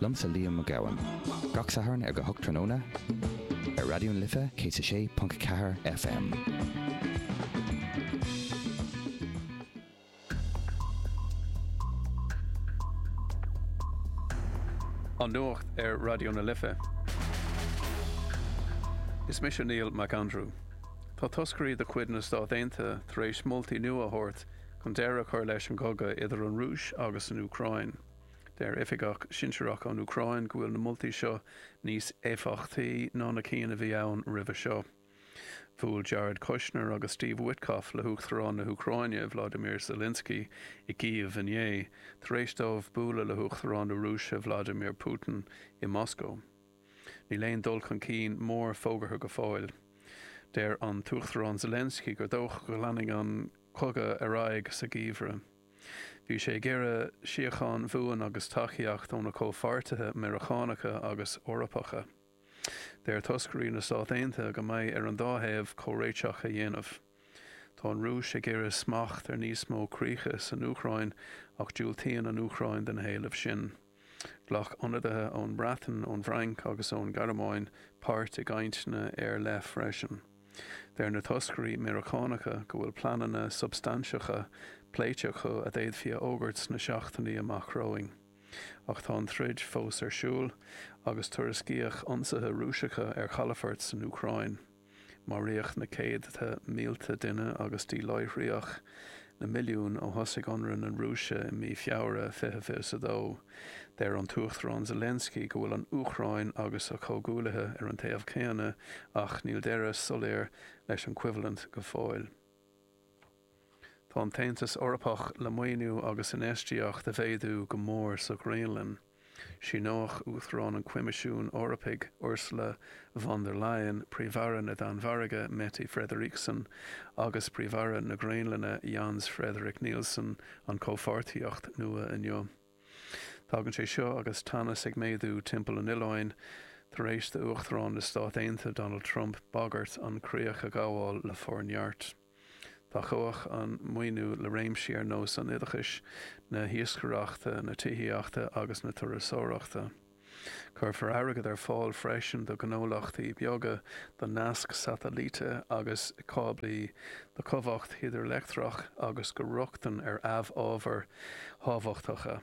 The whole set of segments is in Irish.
Liomsa Liam Mac Gabhann. Gach Satharn ar a hocht tráthnóna ar Raidió na Life 106.4 FM. An Nuacht ar Raidió na Life. Is mise Neil Mac Andrew. Tá toscairí de chuid na Stát Aontaithe tar éis moltaí nua a thabhairt chun deireadh a chur leis an gcogadh idir an Rúis agus an Úcráin. Deir oifigeach sinsearach ón Úcráin go bhfuil na moltaí seo níos éifeachtaí ná na cinn a bhí ann roimhe seo. Bhuail Jared Kushner agus Steve Witkoff le hUachtarán na hÚcráine, Vladimir Zelensky, i gCív inné, tar éis dóibh bualadh le hUachtarán na Rúise, Vladimir Putin, i Moscó. Níl aon dul chun cinn mór fógartha go fóill. Deir an tUachtarán Zelensky gur dócha go leanfaidh an cogadh ar aghaidh sa gheimhreadh. Bhí sé ag iarraidh síochán bhuan agus tacaíocht óna comhpháirtithe Meiriceánacha agus Eorpacha. Deir toscairí na Stát Aontaithe go mbeidh ar an dá thaobh comhréiteach a dhéanamh. Tá an Rúis ag iarraidh smacht ar níos mó críocha san Úcráin ach diúltaíonn an Úcráin do na héilimh sin. Ghlac ionadaithe ón mBreatain, ón bhFrainc agus ón Ghearmáin páirt i gcainteanna ar leith freisin. Deir na toscairí Meiriceánacha go bhfuil pleananna substainteacha pléite acu a d'fhéadfaí a fhógairt sna seachtainí amach romhainn. Ach tá an troid fós ar siúl agus tuairiscíodh ionsaithe Rúiseacha ar chalafoirt san Úcráin. Maraíodh na céadta mílte duine agus díláithríodh na milliúin ó thosaigh ionradh na Rúise i mí Feabhra 2022. Deir an tUachtarán Zelensky go bhfuil an Úcráin agus a comhghuaillithe ar an taobh céanna ach níl deireadh soiléir leis an choimhlint go fóill. Tá an tAontas Eorpach le maoiniú agus infheistíocht a mhéadú go mór sa Ghraonlainn. Síneoidh Uachtarán an Choimisiúin Eorpaigh Ursula von der Leyen, Príomh-Aire na Danmhairge Mette Frederiksen agus Príomh-Aire na Graonlainne Jens Frederik Nielsen an chomhpháirtíocht nua inniu. Tagann sé seo agus teannas ag méadú timpeall an oileáin tar éis d'Uachtarán na Stát Aontaithe Donald Trump bagairt an chríoch a ghabháil le forneart. Tacóidh an maoiniú le réimsí ar nós an oideachais, na hiascaireachta, na tithíochta agus na turasóireachta. Cuirfear airgead ar fáil freisin do ghnólachtaí beaga, do naisc satailíte agus cáblaí, do chumhacht hidrileictreach agus do rochtain ar amhábhair thábhachtacha.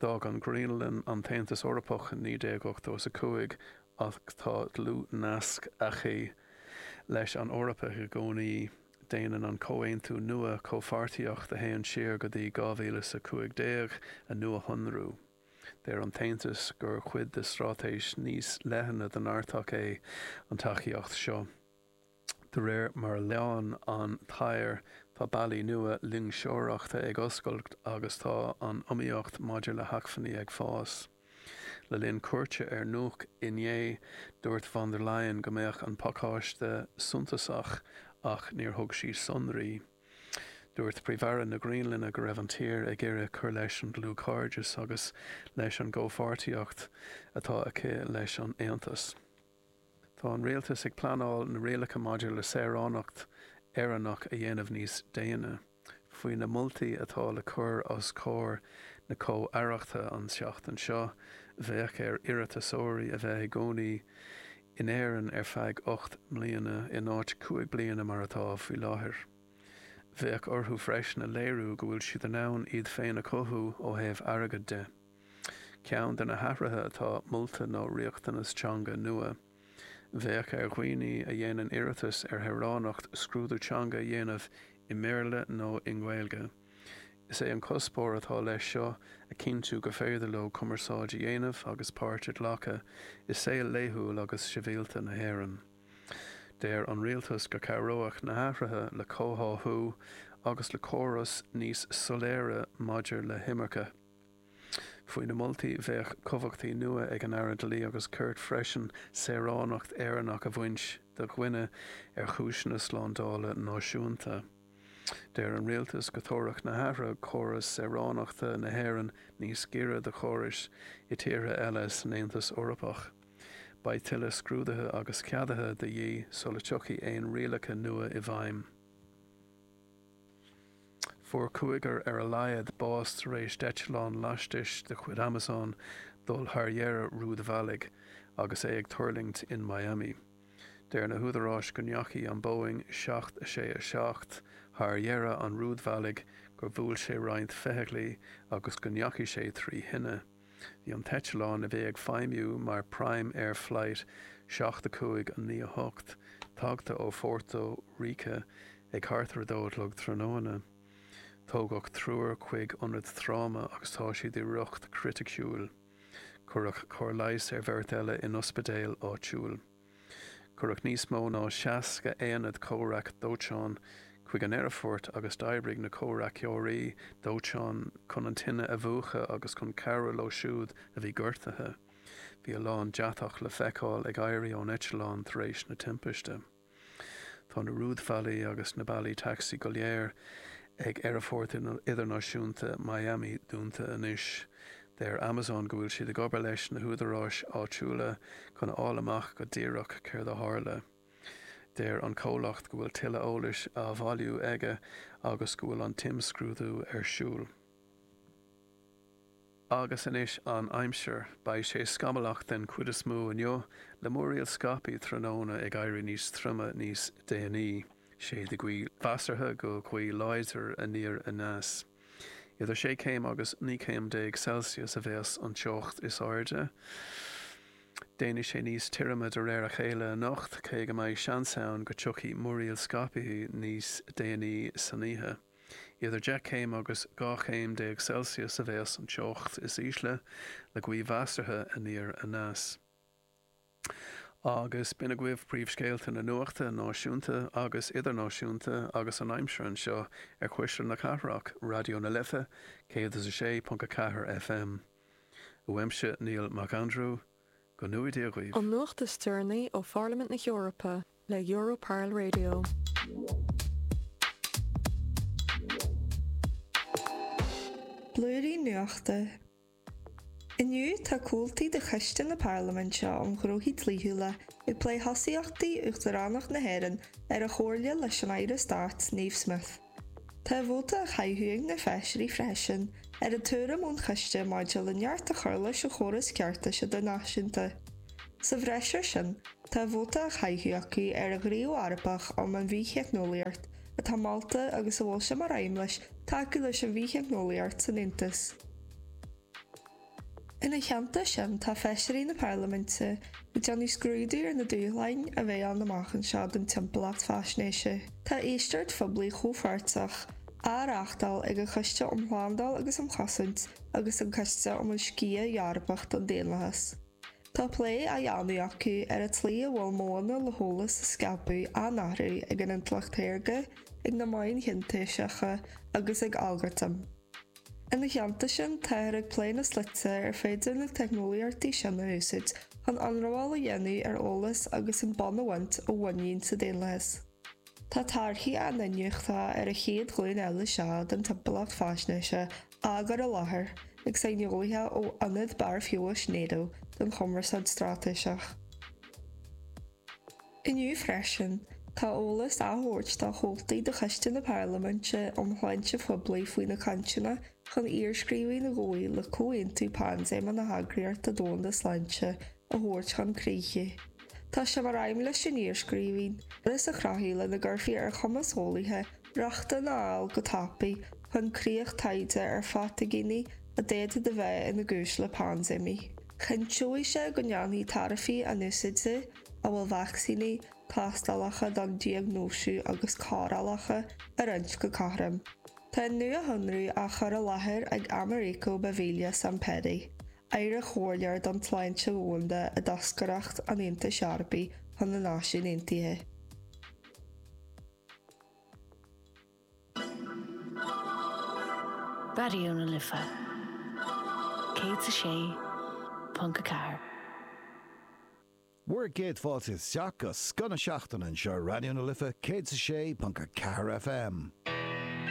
D'fhág an Ghraonlainn an tAontas Eorpach in 1980 is 5 ach tá dlúth-nasc aici leis an Eoraip i gcónaí. Déanann an comhaontú nua comhpháirtíocht a théann siar go dtí 2015 a nuashonrú. Deir an tAontas gur chuid de straitéis níos leithne don Artach é an tacaíocht seo. De réir mar a leánn an t-oighear, tá bealaí nua loingseoireachta ag oscailt agus tá an iomaíocht maidir le hacmhainní ag fás. Le linn cuairte ar Nuuk inné, dúirt von der Leyen go mbeadh an pacáiste suntasach ach níor thug sí sonraí. Dúirt Príomh-Aire na Graonlainne go raibh an tír ag iarraidh cur leis an dlúthchairdeas agus leis an gcomhpháirtíocht atá aici leis an Aontas. Tá an Rialtas ag pleanáil na rialacha maidir le saoránacht Éireannach a dhéanamh níos déine, faoi na moltaí atá le cur os comhair na comhaireachta an tseachtain seo. Bheadh ar iarratasóirí a bheith i gcónaí in Éirinn ar feadh ocht mbliana, in áit cúig bliana mar atá faoi láthair. Bheadh orthu freisin a léiriú go bhfuil siad in ann iad féin a chothú ó thaobh airgid de. Ceann de na hathruithe atá molta ná riachtanas teanga nua. Bheadh ar dhaoine a dhéanann iarratas ar shaoránacht scrúdú teanga a dhéanamh i mBéarla nó i nGaeilge. Is é an cuspóir atá leis seo a chinntiú go féidir leo cumarsáid a dhéanamh agus páirt a ghlacadh i saol laethúil agus sibhialta na hÉireann. Deir an Rialtas go cabhróidh na hathruithe le comhtháthú agus le córas níos soiléire maidir le himirce. Faoi na moltaí bheadh cumhachtaí nua ag an Aire Dlí agus Cirt freisin saoránacht Éireannach a bhaint de dhuine ar chúiseanna slándála náisiúnta. Deir an rialtas go dtabharfadh na hathruithe córas saoránachta na hÉireann níos gaire do chórais i dtíortha eile san Aontas Eorpach. Beidh tuilleadh scrúdaithe agus ceadaithe de dhíth sula dtiocfaidh aon rialacha nua i bhfeidhm. Fuair cúigear ar a laghad bás tar éis d'eiteallán lastais de chuid Amazon dul thar dheireadh rúidbhealaigh agus é ag tuirlingt in Miami. Deir na húdaráis go ndeachaigh an Boeing 767 thar dheireadh an rúidbhealaigh, gur bhuail sé roinnt feithiclí agus go ndeachaigh sé trí thine. Bhí an t-eitleán a bhí ag feidhmiú mar Prime Air Flight 7 5 a 9 8 tagta ó Phórtó Ríce ag thart ar a dó a chlog tráthnóna. Tógadh triúr chuig ionad tráma agus tá siad i riocht criticiúil. Cuireadh cóir leighis ar bheirt eile in ospidéal áitiúil. Cuireadh níos mó ná 60 aonad comhraic dóiteáin chuig an aerfort agus d'oibrigh na comhraiceoirí dóiteáin chun an tine a mhúchadh agus chun cabhrú leo siúd a bhí gortaithe. Bhí a lán deatach le feiceáil ag éirí ón eitleán tar éis na timpiste. Tá na rúidbhealaí agus na bealaí tacsaí go léir ag Aerfort Idirnáisiúnta Miami dúnta anois. Deir Amazon go bhfuil siad ag obair leis na húdaráis áitiúla chun a fháil amach go díreach céard a tharla. Deir an comhlacht go bhfuil tuilleadh eolais á bhailiú aige agus go bhfuil an t-imscrúdú ar siúl. Agus anois an aimsir. Beidh sé scamallach den chuid is mó inniu, le múraíl scaipthe tráthnóna ag éirí níos troime níos déanaí. Séidfidh gaoth mheasartha go gaoth láidir aniar aneas. Idir sé chéim agus naoi chéim déag Celsius a bheas an teocht is airde. Déanfaidh sé níos tirime de réir a chéile anocht, cé go mbeidh seans ann go dtiocfaidh múraíl scaipthe níos déanaí san oíche. Idir deich chéim agus dhá chéim déag Celsius a bheas an teocht is ísle, le gaoth mheasartha aniar aneas. Agus b'in agaibh príomhscéalta na nuachta náisiúnta agus idirnáisiúnta agus an aimsir anseo ar chuisle na cathrach, Raidió na Life 106.4 FM. Uaimse Neil Mac Aindriú, go ngnóthaí Dia dhaoibh. An nuacht is deireanaí ó Pharlaimint na hEorpa le Europarl Radio. Blúirí nuachta. Inniu tá comhaltaí de Choiste na Parlaiminte um Ghnóthaí Dlíthiúla ag plé thosaíochtaí Uachtaránacht na hÉireann ar an Chomhairle leis an Aire Stáit, Niamh Smyth. Tá a vóta á chaitheamh ag na feisirí freisin ar an tuairim ón choiste maidir le neart a chur leis an chóras ceartais idirnáisiúnta. Sa bhreis air sin, tá a vóta á chaitheamh acu ar an Ghníomh Eorpach um an Bhith-theicneolaíocht atá molta agus a bhfuil sé mar aidhm leis tacú leis an bhith-theicneolaíocht san Aontas. Ina theannta sin tá feisirí na Parlaiminte ag déanamh scrúdú ar na dúshláin a bheidh ann amach anseo don timpeallacht faisnéise. Tá éisteacht phoiblí chomhpháirteach á reáchtáil ag an Choiste um Shlándáil agus um Chosaint agus an Coiste um an Sciath Eorpach don Daonlathas. Tá plé á dhéanamh acu ar an tslí a bhfuil modhanna le heolas a scaipeadh á n-athrú ag an intleacht shaorga, ag na meáin shintéiseacha agus ag algartaim. Ina theannta sin, táthar ag plé na slite ar féidir na teicneolaíochtaí sin a úsáid chun ionramháil a dhéanamh ar eolas agus an bonn a bhaint ó mhuinín sa daonlathas. Tá torthaí a n-iniúchta ar an chéad ghlúin eile seo den timpeallacht faisnéise á gcur i láthair ag saineolaithe ó Ionad Barr Feabhais Nato don Chumarsáid Straitéiseach. Inniu freisin, tá eolas á thabhairt do chomhaltaí de Choiste na Parlaiminte um Shláinte Phoiblí faoi na cainteanna chun iarscríbhinn a ghabhfaidh le comhaontú paindéime na hEagraíochta Domhanda Sláinte a thabhairt chun críche. Tá sé mar aidhm leis an iarscríbhinn córas a chruthú lena gcuirfí ar chumas eolaithe Rochtain a fháil go tapaidh chun críoch taighde ar phataiginí a d'fhéadfadh a bheith ina gcúis le paindéimí. Chinnteodh sé go ndéanfaí tairbhí a n-úsáide amhail vacsaíní, tástálacha don diagnóisiú agus cóireálacha a roinnt go cothrom. Tá an nuashonrú á chur i láthair ag Americo Beviglia Zampetti, Aire-Chomhairleoir don tSláinte Dhomhanda i dToscaireacht an Aontais Eorpaigh chun na Náisiún Aontaithe. Raidió na Life 106.4. Bhur gcéad fáilte isteach go scoth na seachtaine anseo ar Raidió na Life 106.4 FM.